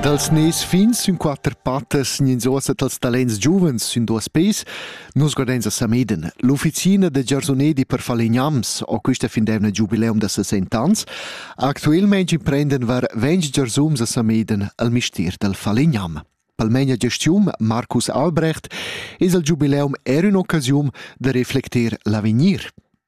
Dals nes fins sün quatter pattas gnins uossa dals talents giuvens sün duos peis, nus guardains a Sameden, l'ufficina da giarsonedi per falegnams, ho quista fin d'eivna giubileum da 60 ans. Actuelmaing imprenden var 20 giarsums a Sameden al mistier dal falegnam. Palmegna gestium Marcus Albrecht es al giubileum er ün'occasiun da reflecter l'avegnir.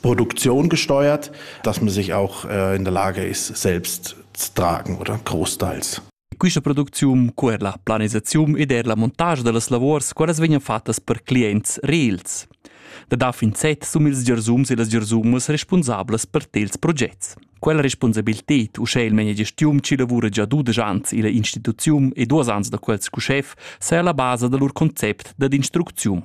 Produktion gesteuert, dass man sich auch äh, in der Lage ist, selbst zu tragen oder großteils. Questa producziun, co er la planisaziun ed er la montage da las lavors, qualas vegnan fattas per clients reals. Da da fin set sum ils giarsums e las giarsumas responsablas per tels projects. Quella responsabilität uschè il menia gestiun ci lavura già dudesch ans illa instituziun e duos ans da quels cu chef saja la basa da lur concept dad instrucziun.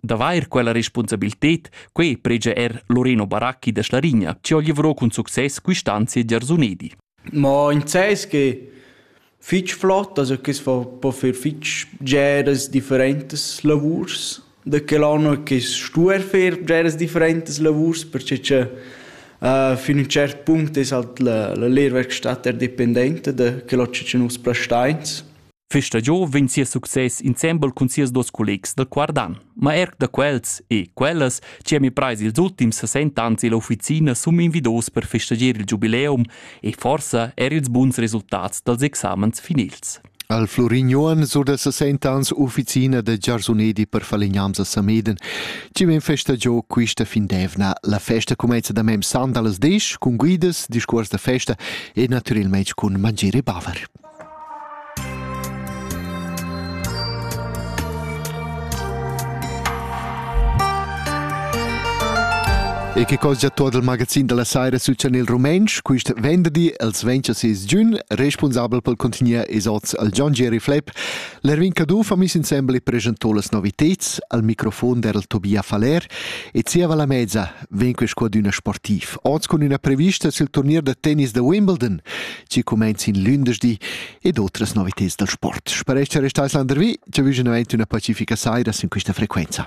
D'avair quella respunsabilted, quei pregia er Loreno Baracchi da Schlarigna, che oglivro cun success quist'anzi a Giarsunedi. Ma in ses che fich flott, also che fa po fer fich geras differentes lavurs da quel anno che stuer fer geras differentes lavurs perché che uh, fin un cert punct es halt la, la lehrwerkstatt dependente da quel che nus plastains Questa giu vegn sia success insembel cun sias dus collegs dal Quardan, ma er da quels e quellas che mi preis ils ultims 60 ans illa ufficina sun invidos per festagier il giubileum e forsa er ils buns resultats dals examens finils. Al Florin Johan sur da 60 ans ufficina da giarsunedi per falignams a Sameden. Ci men festa giò quista fin d'evna. La festa comenza da mem sand allas 10 cun guidas, discuors da festa e naturalmente cun mangere e baver. E che cosa già tot il magazin della saira succede nel Rumänsch? Quist venderdi, els 26 giugn, responsabel pel contenier Esots al John Jerry Flepp, l'Erwin Caduff ha mis insembel e presentò las noviteds al microfon der Tobia Faller e zieva la mezza vegn quest qua d'üna sportiv. Oz cun üna prevista sil turnier da tennis da Wimbledon. chi cumainz in lündeschdi ed otras novitads dal sport. Sparescha restais landervi, ci vügin avent üna pacifica saira sin quista frequenza.